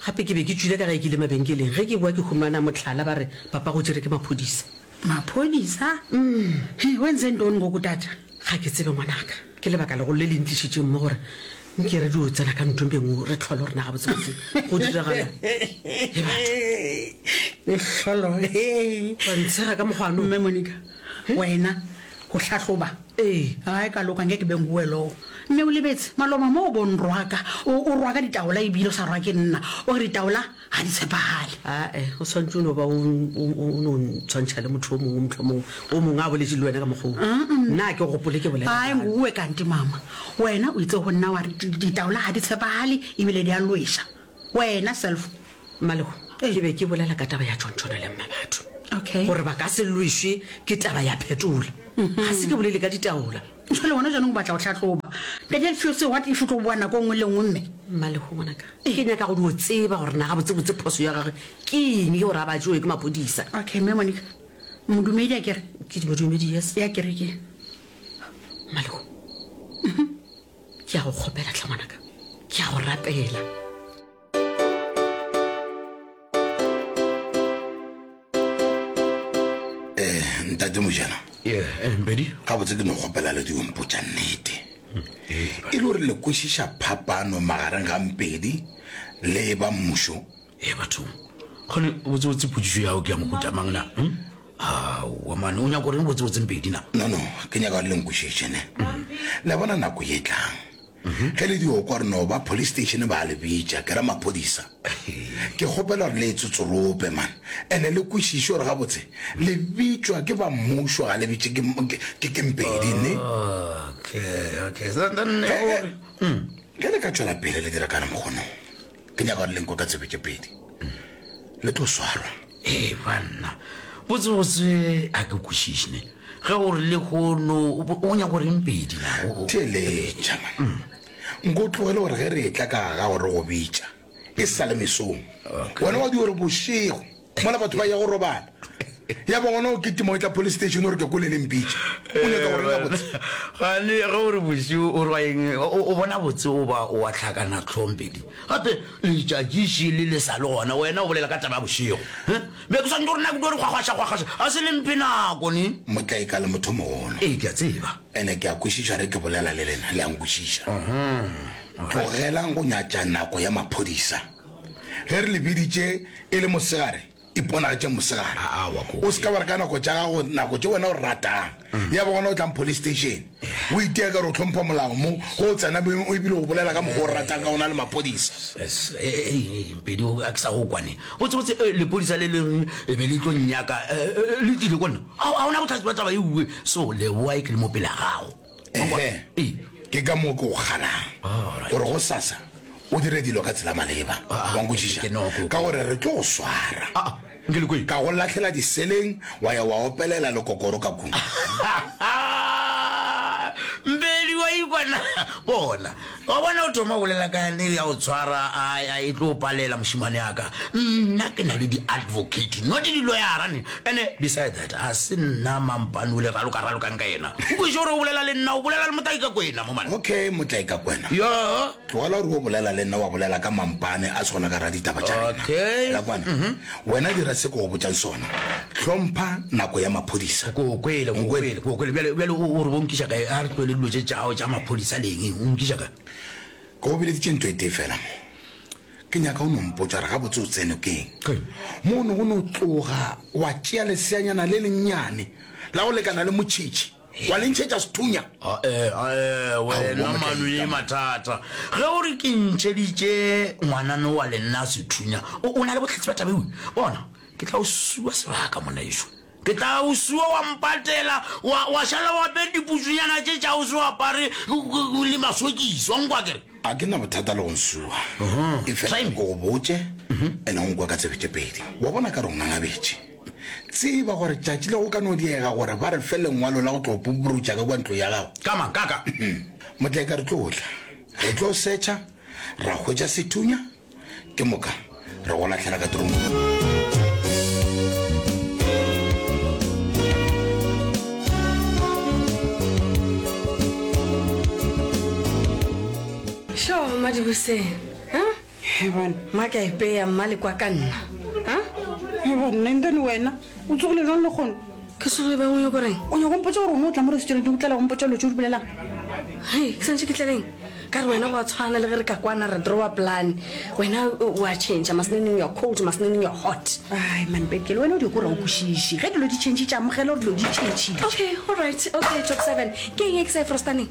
Gape ke be ke tšwile ka ge ke ile mabenkeleng. Ge ke boa ke humana mohlala ba re papa go tšere ke maphodisa. Maphodisa? Umm-hee, wens and on ngoku tata? Ga ke tsebe ngwanaka. Ke lebaka legolo le le ntlišitšeng mo gore nke re dio tsena ka nthong e nngwe re tlhole gore na gabotsebotse go diragala le batho. Lehlolo, hee. Wa ntshega ka mokgwa ano. Mme Monica, Wena, go hlahloba. Ee, ga e ka loka, nke ke be ngwue loo. Mme o lebetse, maloba mo o bo nrwaka, o, o rwaka ditaola ebile o sa rwa ke nna, o re ditaola ga di tshepagale. Ae, o swanetše o no ba o, o, o, o no ntshwantšha le motho o mongwe, mohlomongwe o mongwe a boletše le wena ka mokgwa wo. Uh-uh. Nna a ke gopole ke bolela Ae, bjalo. ngwue kante, Mama. Wena o itse go nna wa re di, ditaola ga di tshepagale ebile di a lweša. Wena, Selfo, Malego, ke be ke bolela ka taba ya tšontšhono le mmabatho Okay. gore ba ka se lwešwe ke taba ya phetola ga se ke bolele ka ditaola Jwale wena jaanong o batla go tlhatloba. Daniel Fiose, what if o tlo boa nako e nngwe le nngwe mme? Malego ngwanaka ke nyaka go dio tseba gore na ga botsebotse phoso ya gage ke eng ye gore a ba jewe ke maphodisa Okay, mme Monica. Modumedi a kere ke dimodumedi yes ya kerekeng. Malego ke ya go kgopela tlha ngwanaka ke ya go rapela ntate mojana mpedi eh, ga botse ke no kgopela le diompotsa nnete e le gore le kwešiša phapano magareng ga mpedi le ba mmušo e eh, bathong gone botsebotse potsiso yago ke ya mohutamang na hmm? aowa mane o nyako reng botsebotseng pedi na no no ke nyaka gore le nkwešišene le bona nako ye tlang Ge le di okwa re no ba police station ba le bitša ke ra maphodisa. Ke kgopela gore le e tsotsorope man ene le kwešiše gore gabotse le bitšwa ke ba mmušo ga le bitše ke ke mpedi ne. Okay, okay. Ge le ka tšwela pele le dira ka re mokgonong. ke nyaka gore lenko ka tsebe tše pedi le tlo swarwa ee banna botsebotse a ke kwešišne ge o re le kono o nyaka gore mpedi theletša nko o tlogele gore ge re etla ka ga gore go bitša e sale mesong wena wa di gore bošego mola batho ba ya go robala ya ba gona o ketimo e tla police station gore ke kole le mpitše o nyaka gore la botse gane ge gore bosiu o rwa eng o bona botse o ba o wa tlhakana tlhompedi gape letšatšiši le le sa le gona wena o bolela ka taba ya bošego be ke swantse gore nako gore kgwakgwašakgwakgwaša ga se le mpe nako ne motla e ka le motho mogolo ee ke a tseba ene ke a kwešiša re ke bolela le lena le a nkwešiša tlogelang go nyatša nako ya maphodisa ge re le biditše e le mosegare iponagatšeng mosegare Ah, aowa, koko. o se ka wa re ka nako tša gago nako tše wena o ratang Mm. ya ba gona o tlang police station o itea ka re o tlhompha molao mo go o tsena beng o ebile o bolela ka mokgwa o ratang ka ona le maphodisa Yes, eh, eh, eh, pedi o- a ke sa go kwane botsebotse eh, lepodisa le leng e be le tlo nnyaka eh, eh, le tlile ko nna ga ga ona botlhatsi ba taba e uwe so leboa e ke le mo pela gago ehe ke ka moo ke o ganang gore go sasa o dire dilo ka tsela maleba ah, wa nkwešiša ka gore re tlo go swara ah, ah, ka go latlhela diseleng wa ya wa opelela lekokoro ka kung mbedi wa ikwana bona Wa bona, o thoma go bolela ka yane ya go tshwara, a, a e tlo palela, mošemane wa ka. Nna ke na le di-advocate, not di-loyara ne. Ene, beside that, ga se nna mampane o le raloka-ralokang ka yena. O kweše gore o bolela le nna, o bolela le Motlaikakwena mo mane. Okay, Motlaikakwena. Yoo. Tlogela gore o bolela le nna, wa bolela ka mampane a swana ka ra ditaba tša rena. Okay. Ra kwana? Wena dira se ke go botšang sona. Hlompha nako ya maphodisa. Ke go kwele, ke go kwele, ke go kwele. Bjale, bjale o, o re bo nkiša kae? A re tlohele dilo tše tšao tša maphodisa le eng. O nkiša kae? Ke go bileditše ntho e tee fela mo. Ke nyaka o no mpotša gore gabotse o tsene keng. Ke. Mo o ne o no tloga wa tšea leseanyana le lennyane la go lekana le motšhitšhi. wa le ntšhetša sethunya ae ae wena mano ye mathata ge o re ke ntšheditše ngwanano wa lenna sethunya o o na le bohlatsi ba tabewe bona ke tla o sua sebaka monaešo ke tla o sua wa mpatela wa, wa šala wa be diputsonyana tše tša o se o apare le masokisi wa nkwa kere a ke na bothata le go nsua e fela ko go botše ene go nkwa ka tsebe tše pedi wa bona ka re o ngangabetše Tseba gore tšatši le go ka no diega gore ba re fe lengwalo la go tlo puburutša ka kua ntlong ya gago. Ka mang? Ka ka. Motlaika re tlo tla, re tlo setšha, ra hwetša sethunya, ke moka re go lahlela ka trongkong. Sure, Madibuseng. Maka epeya mma le kwa ka nna. Nna and then wena o tsogile jwang le kgono? Ke tsoge bang o nyoko reng? O nyoko mpotsa gore o mo tla mo restaurant o tlela go mpotsa lo tse o di bolelang? Hey, ke santse ke tlaleng. Ka re wena go a tshwana le ge re ka kwana re drawa plan. Wena o a change, masneneng you are cold, masneneng you are hot. Ai man Bekele, wena o di kora o kwešiše. Ge dilo di change tša amogela gore dilo di change. Okay, all right. Okay, top seven. Ke eng e ke sa e frostaneng?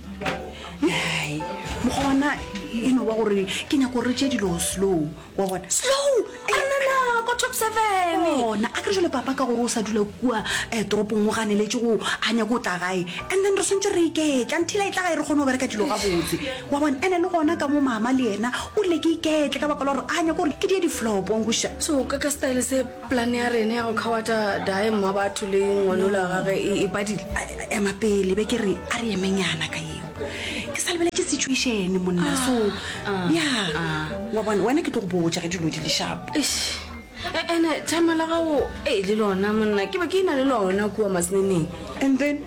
Hai, mokgwa wa na e no ba gore ke nyako gore re tšee dilo slow wa bona slow anana ko top seven ona a kere jale papa ka gore o sa dula kua um toropong o ganeletse go a nyako o tla gae and then re swantse re iketla nthila e tla gae re kgone go bereka dilo ga botse wa bona ene le gona ka mo mama le yena o rile ke iketle ka baka la gore a nyako gore ke die diflopong boša so ka ka style se Plane ya rena ya go khawata Dae mma batho le ngwanolo ya gage e, e padile. A, a, ema pele be ke re a re emenyana ka yeo ke sa lebeletše situation monna so ya wa bona wena ke tlo go botša ge dilo di le sharp Eish. E- ene thama la gago e le lona monna ke be ke ina le lona kua maseneneng and then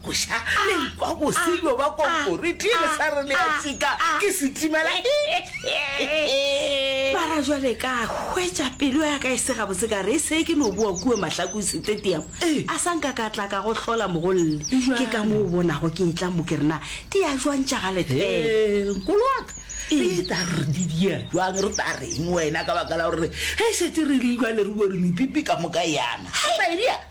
Go ša lenkwa bose bjo ba konkoriti e le sa re le ya tsika ke setimela. Mara jwale ka hwetša pelo ya ka e se gabotse ka re e se ke no boa kua Mahlaku Stadium a sa nka ka tla ka go hlola mogolle. Ke ka mo o bonago ke etla mo ke re na di ya jwang tša ga Lethebe. Hee nkolo wa ka re eta re di di ya jwang re ta reng wena ka baka la gore ge e šetše re le jwale re bore mepipi ka moka yana. Hai my dear.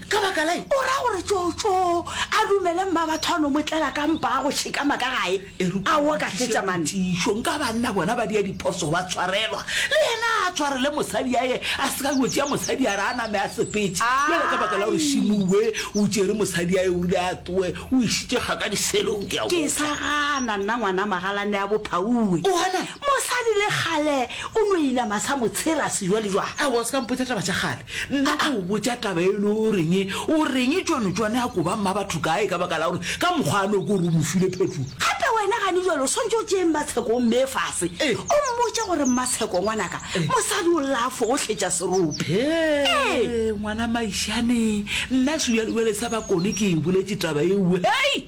Ka baka la'ng? O ra gore tšoo-tšoo a dumele Mmabatho a no mo tlela ka mpa a go tšhekama ka gae. Aowa ka fetša man. Tiišo, nka banna bona ba dia diphoso ba tshwarelwa. Le yena a tshwarele mosadi a ye, a se ka yo tšea mosadi a re a name a sepetše. Bjale ka baka la gore Shimue o tšere mosadi a ye o rile a tloe, o išitše kga ka diselong, ke a go Ke botša. sa gana nna ngwana magalane ya Bophaue. O gana? Mosadi le kgale o no inama sa mo tshela sejwalejwale. Aowa o se ka mpotša taba tša kgale. Nna ka o botša taba e le o reng o reng tšone tšone a koba mma batho kae ka baka la gore ka mokgwa a no ko re o mo file phetho gape wena gane jalo o swantse o tšee mmatsheko o mme fase o mmotše gore mmatsheko ngwanaka mosadi o lla fo o hletša serope ee ngwana maišane nna sebjalebjale sa bakone ke e boletše taba eo hei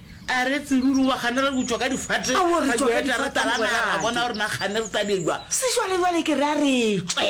A re, Tseruri, wa gane re butšwa ka difate, Ao, re ra tšwa ka dueta, re difate, talana, ra bona morate. gore na gane re tabjwa. Sešwalejwale ke re a re tšwe.